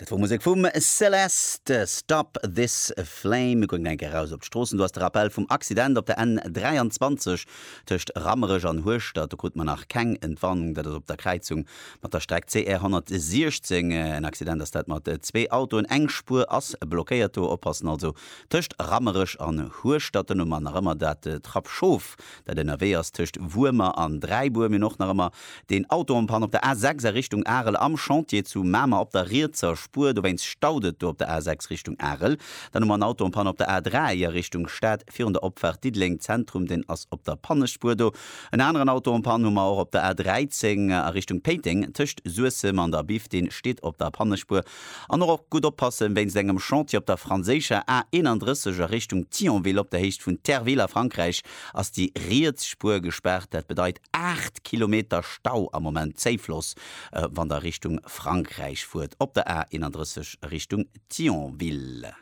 Dat wor Musek vum Celeste, Stop This Flame. Mir goen enk eraus op d'Stroossen. Do ass de Rappel vum Accident op der N23 tëscht Rammerech an Hueschtert. Do krute mer nach keng Entwarnung. Dat ass op der Kräizung mat der Streck CR 116 en Accident ass dat mat zwee Autoen. Eng Spuer ass blockéiert do. Oppassen also tëscht Rammerech an Hueschtert. Duerno mar nach ëmmer dat Trappschof. dat ënnerwee ass tëscht Wuermer an Dräibuer, minn och nach ëmmer deen Auto en panne op der A6 a Richtung Arel am Chantier zu Mamer op der rietser Spuer, dowéinst staut et do op der A6 Richtung Arel. Dann hu mer en Auto en panne op der A3 a Richtung Stad virun der Opfaart Diddeleng Zentrum, deen ass op der Pannespuer do. En aneren Auto en panne hu mer och op der A13 a Richtung Péiteng tëscht Suessem an der Biff, deen steet op der Pannespuer. An och op gutt oppassen wéinst engem Chantier op der franséischer A 31 a Richtung Thionville. Op der Héicht vun Terville a Frankräich ass déi riets Spuer gespaart. Dat bedeit 8 Kilometer Stau am Moment, Zéifloss, wann der Richtung Frankräich fuert op der A 31 a Richtung Thionville.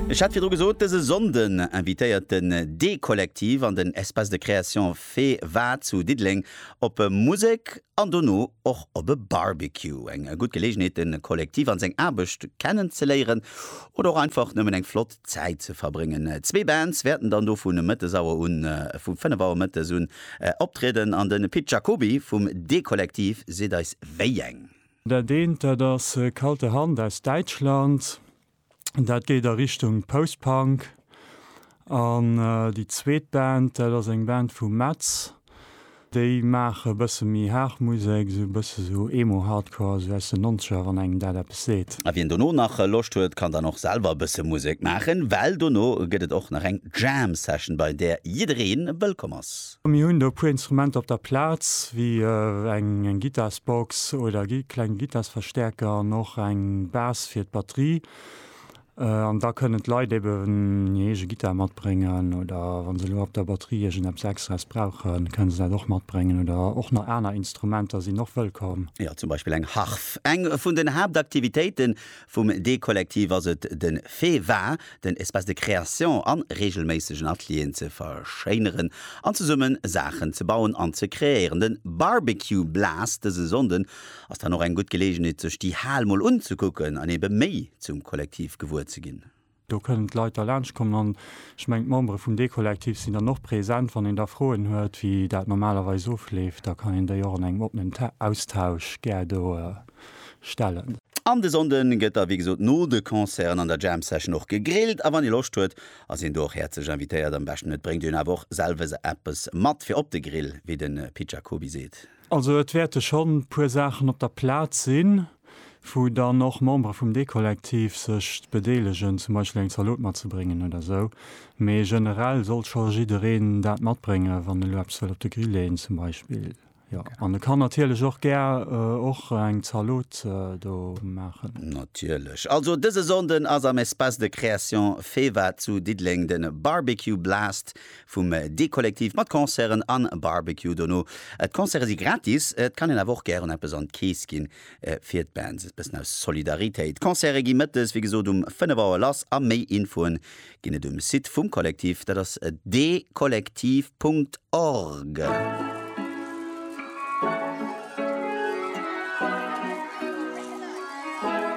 Ech hat virdru gesot, dëse Sonnden invitéiert den D-Kollektiv an den Espace de Création Féwa zu Diddeleng op Musek, an dono och op e Barbecue. Eng gutt Geleegenheet de Kollektiv an seng Aarbecht kennen ze léieren oder och einfach nëmmen eng flott Zäit ze verbréngen. Zwee Bands wäerten dann do vu Mëttesauer un, vu 5 Auer Mëttes un, optrieden an de Pit Jacoby vum D-Kollektiv seet eis wéi eng. Dat eent dat ass Kalte Hand aus Däitschland. dat geet a Richtung Post-Punk. An déi zweet Band, dat ass eng Band vu Metz, déi maache bësse méi haart Musek, esou e bësse sou Emo-Hardcore, esou aus den Nonzeger, wann engem dat eppes seet. A wien dono nach Loscht huet, kann dann och selwer e bësse Musek maachen, well dono gëtt et och nach eng Jam-Session, bei där jidderee wëllkomm ass. Mir hunn do e puer Instrumenter op der Plaz, wéi eng Gittarsbox oder e klenge Gittarsverstäerker an och eng Bas fir d'Batterie. An da kënnen d'Leit eben hir eege Gittar matbréngen oder wa se elo op der Batterie iergendeppes Extraes brauchen, kënnen se dat och matbréngen. Oder och nach aner Instrumenter sinn och wëllkomm. Jo, zum Beispill eng Harf. Eng vun den Haaptaktivitéiten Vum D-Kollektiv ass et den Fait wa, den Espace de création an regelméissegen Atelieren ze verschéineren an zesummen Saachen ze bauen an ze kreéieren. Den Barbecue Blast dësen Sonnden ass dann och eng gutt Gelegenheet sech déi Hal mol unzekucken an eben méi zum Kollektiv gewuer ze ginn. Do kënnen d'Leit da laanscht kommen an ech mengen d'Membere vum Dekollektiv sinn dann och present. Wann een da Froen huet, wéi dat normalerweis ofleeft, da kann een déi och an engem oppenen Austausch gär do stellen. An de Sonnden gëtt da wéi gesot no de Concerten an der Jam Session och gegrillt a wann ee Loscht huet, ass een do och häerzlech invitéiert. Am beschten et bréngt een awer och selwes eppes mat fir op de Grill, wéi de Pit Jacoby seet. Also et wäerte schonn e puer Saachen op der Plaz sinn, wou dann och Membere vum Deekollektiv sech bedeelegen, zum Beispill eng Zalot matzebréngen oder esou. Mee generell soll scho jiddereen dat matbréngen, wann e lo eppes wëll op de Grill leeën zum Beispill. Jo, an e kann natierlech och gär och eng Zalot do maachen. Natierlech. Also dëse Sonnden ass am Espace de Création Feva zu Diddeleng de Barbecue Blast. Vum Dekollektiv mat Concerten an Barbecue dono. D'Concerte si gratis, et kann een awer och gären eppes an d'Kees ginn fir d'Bands. E bëssen aus Solidaritéit. D'Concerte gi mëttes wéi gesot um 5 Auer lass a méi Infoen ginn et um Site vum Kollektiv, dat ass dekollektiv Punkt org.